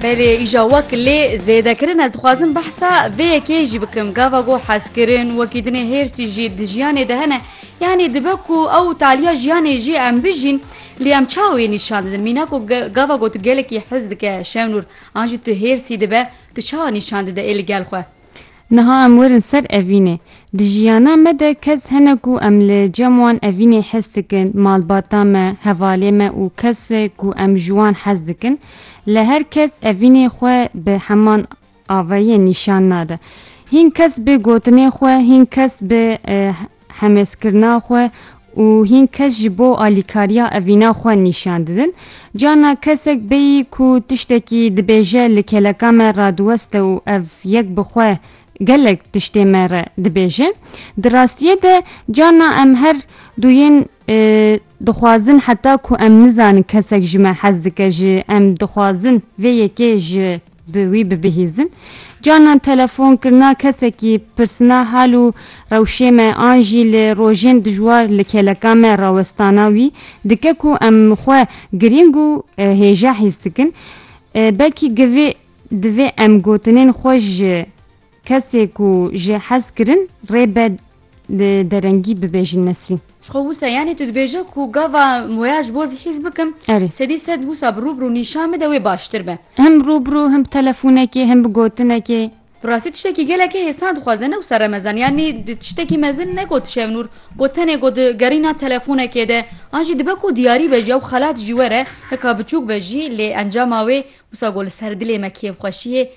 Belê îja wek lê zêdekirin ez dixwazim behsa vê yekê jî bikim gava got hezkirin wekî dinê hêrsî jî di jiyanê de hene yanî dibe ku ew taliya jiyanê jî em bijîn lê em çawê nîşan didin mîna ku gava got tu gelekî hez dike şewnûr an jî tu hêrsî dibe tu çawa nîşan dide ê li gel xwe Niha em werin ser evînê. Di jiyana me de kes hene ku em li cem wan evînê hes dikin, malbata me, hevalê me û kes ku em ji wan hez dikin. Lê her kes evînê xwe bi heman avayiyê nîşan nade. Hîn kes bi gotinê xwe, hîn kes bi hemezkirina xwe û hîn kes ji bo alîkariya evîna xwe nîşan didin. Carna kesek bêyî ku tiştekî dibêje li keleka me radiweste û ev yek bi xwe gelek tiştê me re dibêje. Di rastiyê de carna em her duyên Dixwazin heta ku em nizanin kesek ji me hez dike ji em dixwazin vê yekê ji bi wî bibihîzin. Carnan telefon kirina kesekî pirsina hal û rewşê me an jî li rojên dijwar li kêleka me rawestana wî dike ku em xwe girîng û hêja hîs dikin. Belkî givê divê em gotinên xwe ji Kesê ku jê hez kirin rê be li derengî bibêjin Nesrîn. Ji xwe wisa yanî tu dibêje ku gava waya ji bo zihîz bikim sedî sed wisa bi rûbirû nîşan bide wê baştir be. Him rûbirû him bi telefonekê him bi gotinekê. Bi rastî tiştekî gelekî hêsan dixwaze ne wisa remezan yanî tiştekî mezin negot Şevnûr got tenê got di gerîna telefonekê de an jî dibe ku diyarî be jî ew xelat jî were hika biçûk be jî lê encama wê wisa got li ser dilê me kêfxweşiyê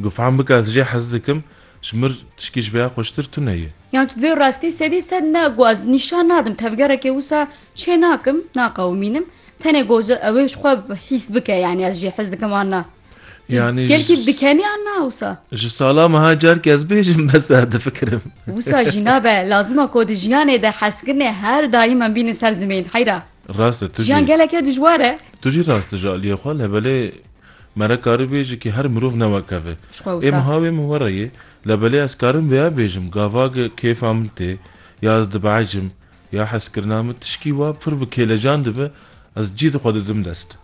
Gufan bike ez jê hez dikim. Ji mir tişkî ji vêya xweştir tune ye. Yan tu dibê rastî sedî sed ne ku ez nîşan nadim tevgerekê wisa çê nakim naqewimînim tenê goji ew ê ji xwe hîs bike yanî ez jê hez dikim an na. Yanî Gelkî dikenî an na wisa. Ji sala meha carkî ez bêjim bes e difikirim. Wisa jî nabe lazim e ku di jiyanê de hezkirinê her daîm em bînin ser zimên heyra. Rast e tu jî. Jiyan geleke dijwar e. Tu jî rast dijî aliyê xwe le belê Me re karî bê ji kî her mirov newekeve. Jixwe wisa. Ê mi ha wê mi were yê, lebelê ez karim vêya bêjim, gava ge kêfa min tê, ya ez dibehecim, ya hezkirina min tişkî wa pir bi kêlecan dibe, ez cî di xwe didim dest.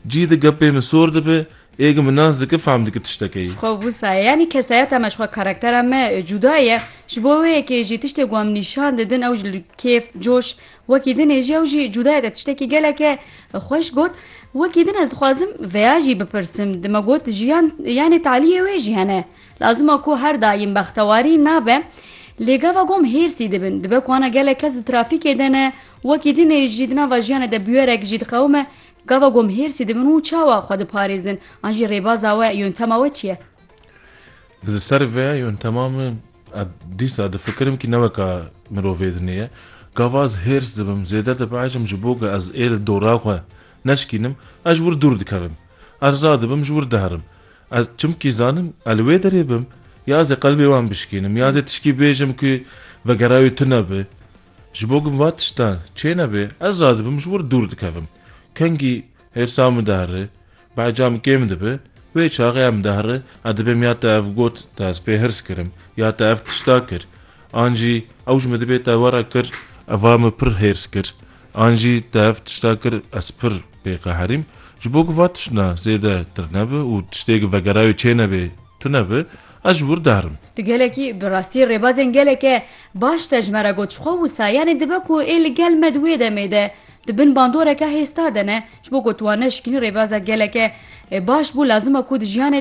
Cî di gepê min sor dibe, ê ge min nas dike fehm dike tiştekeyê. Xwe wisa. Yanî kesayeta me jixwe karaktera me cuda ye. Ji bo wê yekê jî tiştê ku em nîşan didin ew ji li kêf, coş, Wekî din ê jî ew jî cûdayeke tiştekî geleke xweş got, Wekî din ez dixwazim veya jî bipirsim, di me got jiyan yanê talîyê wê jî hene. Lazima ku her daîm bextewarî nabe. Lê gava gom hêrsî dibin. Dibe ku ana gelek kes di trafîkê de ne, wekî din ê jî di nava jiyanê de bûyerek jî diqewime. Gava gom hêrsî dibin û çawa xwe diparêzin? An jî rêbaza we, yöntema we çi ye? Li ser vê yöntema min Ez dîsa difikirim kî ne weka mirovê dinê ye. Gava ez hêrs dibim, zêde dibehecim ji bo ku ez ê li dora xwe neşkînim, ez ji wir dûr dikevim. Ez radibim ji wir diherim. Ez çimkî zanim ez li wê derê bim ya ez ê qelbê wan bişkînim ya ez ê tişkî bêjim ku vegera wê tune be. Ji bo ku va tiştan çênebe ez radibim ji wir dûr dikevim. Kengî Hêrsa Midahrê, behca min kêm dibe, wê çaxê ya Midahrê ez dibêm ya te ev got, te ez pê hirs kirim, ya te ev tişta kir, an jî ew ji min dibê te we re kir, eva min pir hêrs kir, an jî te ev tişta kir, ez pir pê qeherîm, ji bo ku va tiştna zêde tirnebe û tiştêk vegerayê çênebê Tune bi, ez wir diherim. Tu gelekî bi rastî rêbazên geleke baş te ji me re got ji xwe wisa yanî dibe ku ê li gel me di wê demê de di bin bandoreke hêsta de ne ji bo ku tu wan neşikînî rêbaza geleke baş bû lazim e ku di jiyanê de